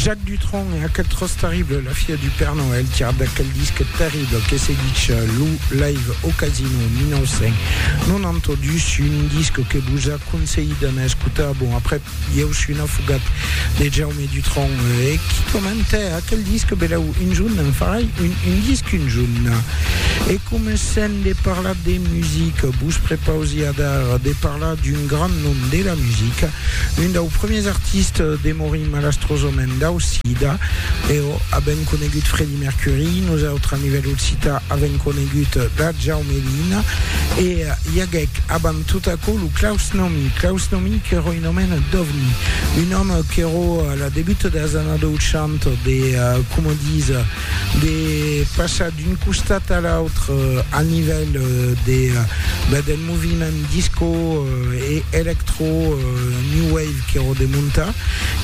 Jacques Dutronc e aquel tros terrible, la fia du Père Noël, tirat d'aquel disc terrible que se ditz lo Live au Casino 1992, un disc que vos aconselhi d'anar escotar. Bon, après, i eu suis un afogat de Jaume Dutronc e qui commente aquel disc, beleu, un junt en farai un, un disc un junt. E comencem de parlar de musique, vos prepausi a dar de parlar d'un grand nom de la musique, Un dau premiers artistes de morir malastrosament dau sida, eau avem conegut Freddie Mercury, nosautres a nivèl occitan avem conegut la Jaumelina, e i aguec abant tot aquò lo Klaus Nomi, Klaus Nomi qu'èra un òmen d'ovni, un òme qu'èra a la debut das annadochanta de, coma disa, de passar d'un costat a l'autre al nivèl de, ben, del moviment disco e electro new wave qu'èro de montar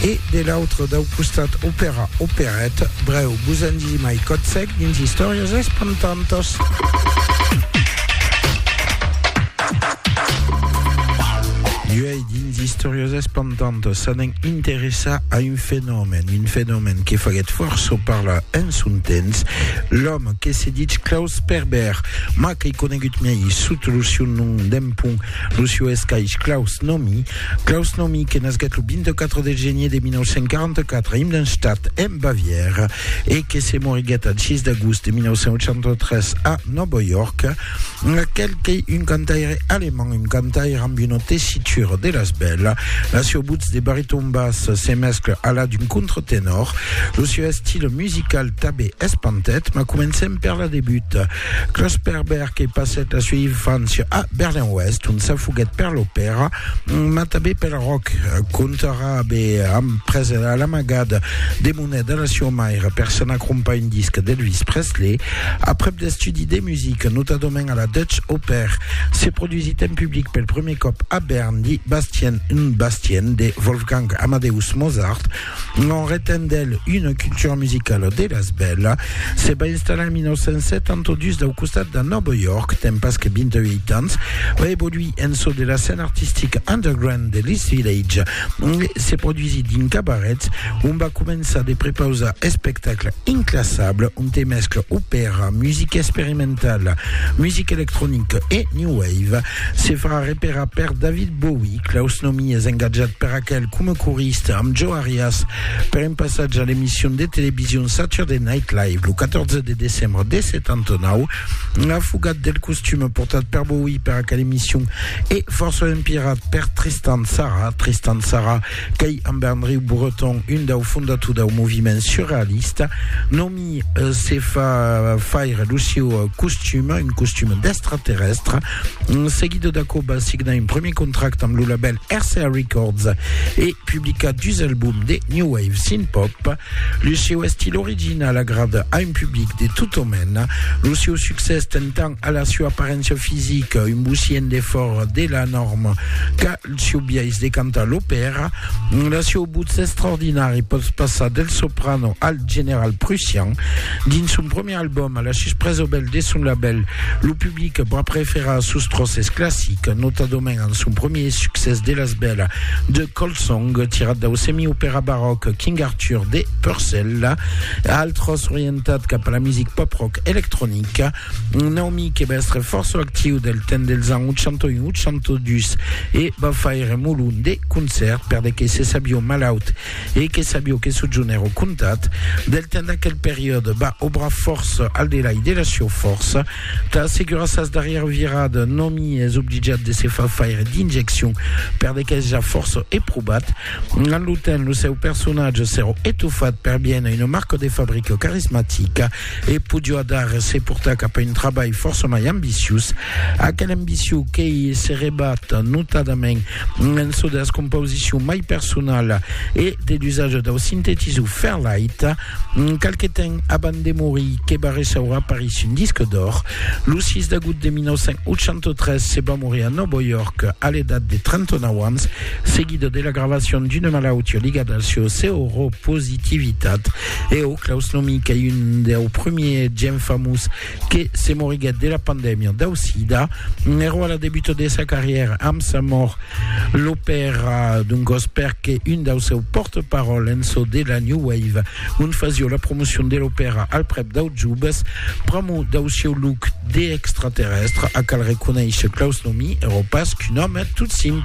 e de l'autre dau costat opèra, operèt, brèu, vos en disi mai, còd sec dins istòrias espantantas. Dins d'istòrias espantantas s'anèn interessar a un fenomèn, un fenomèn que faguèt fòrça parlar en son temps, l'òme que se ditz Klaus Sperber, mas qu'ei conegut mai sota lo sieu nom d'empont, lo sieu escaish Klaus Nomi. Klaus Nomi que nasguèt lo 24 de genier de 1944 a Immenstadt, en Bavièra, e que se moriguèt al 6 d'agost de 1983 a Nòva York, Aquel qu'ei un cantaire alemand, un cantaire amb una tessitura de las bèlas. La sieu votz de bariton bas se mescla a la d'un contratenor. Lo sieu estil musical tabé es pantet, mas comencem per la debut. Klaus Perberg e passèt la sieu infància a Berlin-Oèst, ont s'afoguèt per l'opèra, mas tabé pel rock. Contarà abé amb presa a l'amagada de Una de las sua maire per s'anar crompar un disc d'Elvis Presley aprèp d'estudi de musica, notadament a la Dutch Oper. Se produsit en public pel prumèr còp a Bern di Bastien und Bastien de Wolfgang Amadeus Mozart. En retent d'el una cultura musicala de las bèla, se va installar en 1972 dau costat de Nòva York, tempas que 28 ans, va evoluir en çò de la scèna artistica underground de l'East Village, Se produisit dins cabarets, ont va començar de prepausar espectacle inclassable onte mescla opèra, musica experimentala, musica electronica e new wave. Se farà reperar per David Bowie, Klaus Nomi es engatjat per aquel coma corista amb Joe Arias per un passatge a l'emission de television Saturday Night Live lo 14 de decembre de 79. Afogat del costume portat per Bowie per aquel emission, E fòrça un pirat per Tristan Tzara, Tristan Tzara qu'ei amb Andreu Breton un dau fondator dau moviment surrealista, nomi se fa faire lo sieu costum, un costum d'extraterrèstre. Seguida d'aquò va signar un premier contracte amb lo label RCA Records e publicar dus albums de new wave synth-pop. Lo sieu estil original agrada a un public de tot o mena. Lo sieu succès ten tant A la sua aparéncia fisica, un bocient de fòra de la nòrma qu'a el sieu biais de cantar l'opèra, la sieu votz extraordinari pòt passar del soprano al general prussian. Dins son premier album, a la sus près obèl de son labèl, lo public va preferar sos tròces classics, notadament amb son premier succès de las bèla The Cold Song, tirat dau semi-opèra baròc King Arthur de Purcell, altròs orientat cap a la music pop-rock electronica. Un òmi que va èstre fòrça actiu del temps dels ans 81-82 e va faire molon de concèrt per de que se sabió malaut e que sabió que sojunèr au comtat. Del temps d'aquel periòde va obrar fòrça al delai de la sieu fòrça. Tà assegurar sas darrièra virada, un òmi es obligat de se far faire d'injeccion per de qu'es ja fòrça eprobat. Amb lo temps, lo seu personatge s'èra etofat per bien a una marca de fabrica carismatica E podió adar se portar cap a un trabalh fòrça mai ambiciós, aquela ambicion qu'ei se rebat notadament en çò de las composicions mai personalas e de l'usatge dau sintetisor Fairlight. Qualque temps abans de morir, que va ressaura París un disc d'òr, lo 6 d'agout de 1983 se va morir a Nòvo York a l'edat de 39 ans, seguida de la gravacion d'una malautiá ligada al seu seropositivitat E ò, Claus Nomi qu'ei un deu primier gent famós que se moriguèt de la pandèmia dau sida, ero a la debuta de sa carrièra amb sa mòrt, l'opèra d'un gòs perque un dau seu pòrte-paròl en çò de la New Wave, ont fasió la promocion de l'opèra al prèp dau jubes, pr'amor dau sieu look d'extraterrèstre, a cal reconéisher Claus Nomi ero pas qu'un òme tot simple.